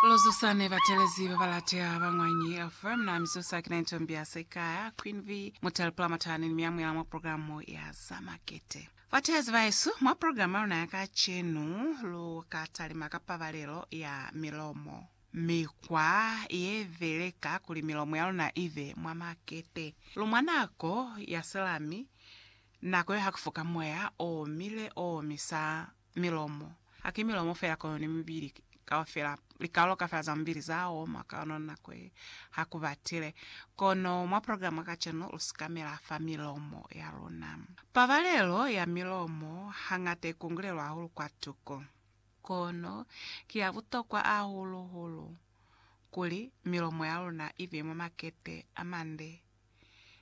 Lozusani batelezi babalateha ba Mwanyi FM na Mizusa kina into mbiasa ikaya Queen V Mutale Pulamatani ni miyamuyala mwa programu ya za makete. Bateezi bahesu, mwa programu ya luna ya kacenu lu ka talima ka pabalelo ya milomo, mikwa ye beleka kuli milomo ya luna i be mwa makete. Lu mwa nako ya selami, nako yo ha ku foka moya o mile o omisa. milomo. Haki milomo fela kono ni mibili kaufela. Likalolo kaufela za mubili za oma ka yona nako ye ha ku batile. Kono mwa programa ya kacenu lu sikamela fa milomo ya luna. Pabalelo ya milomo hañata i kungulelwa hahulu kwatuko. Kono ki ya butokwa hahulu-hulu kuli milomo ya luna i be mwa makete a mande.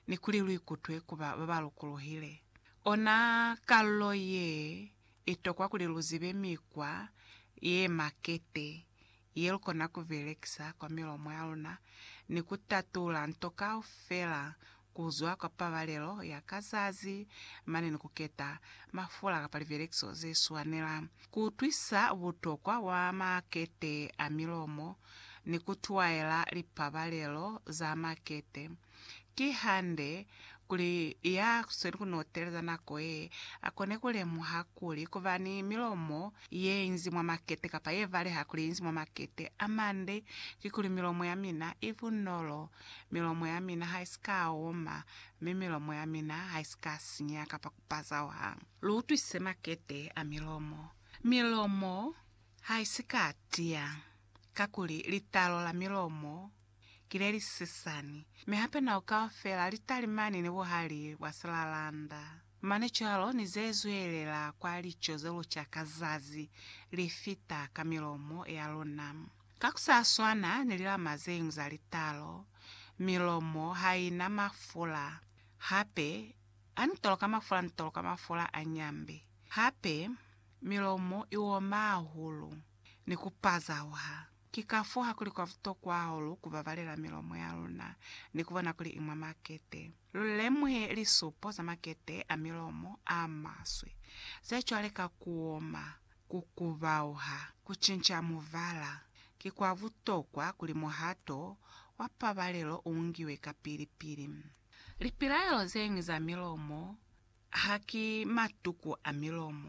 ni kuli lu ikutwe ku ba ba ba lukuluhile. Ona kalulo ye i tokwa kuli lu zibe mikwa ye makete ye lu kona ku belekisa kwa milomo ya luna ni ku tatula nto kaufela ku zwa kwa pabalelo ya ka zazi mane ni ku keta mafula kapa libelekiso ze swanelang Kuutwisa butokwa bwa makete a milomo ni kutwaela lipabalelo za makete. Kihande, kuli ya sweli kunoteleza nako ye, akone kulemuha kuli kuba ni milomo yeinzi mwa makete kapa yebaleha kuli yeinzi mwa makete amande kikuli milomo yamina ibunolo, milomo yamina haisika oma, mi milomo yamina haisika sinyeha kapa bazawang. Lu utwise makete a milomo. Milomo ha i si ka tiya, kakuli litalo la milomo ki le li sisani, mi hape nao kaufela li talimani ni buhali bwa silalanda. Mane cwalo ni ze zwelela kwa lico ze lu ca ka zazi, li fita ka milomo ya luna. Ka ku sa swana ni lilama ze ñwi za litalo, milomo ha i na mafula hape A ntola ka mafula ntola ka mafula a nyambe, hape milomo i oma hahulu ni ku pazauha. Ki kafoo ha kuli kwa butokwa hahulu ku babalela milomo ya luna ni ku bona kuli i mwa makete. Lu lemuhe lisupo za makete a milomo a maswe ze cwale ka ku oma, ku kubauha, ku cinca mubala. Ki kwa butokwa kuli muhato wa pabalelo u ngiwe kapili-pili. Lipilaelo zeñwi za milomo haki matuku a milomo.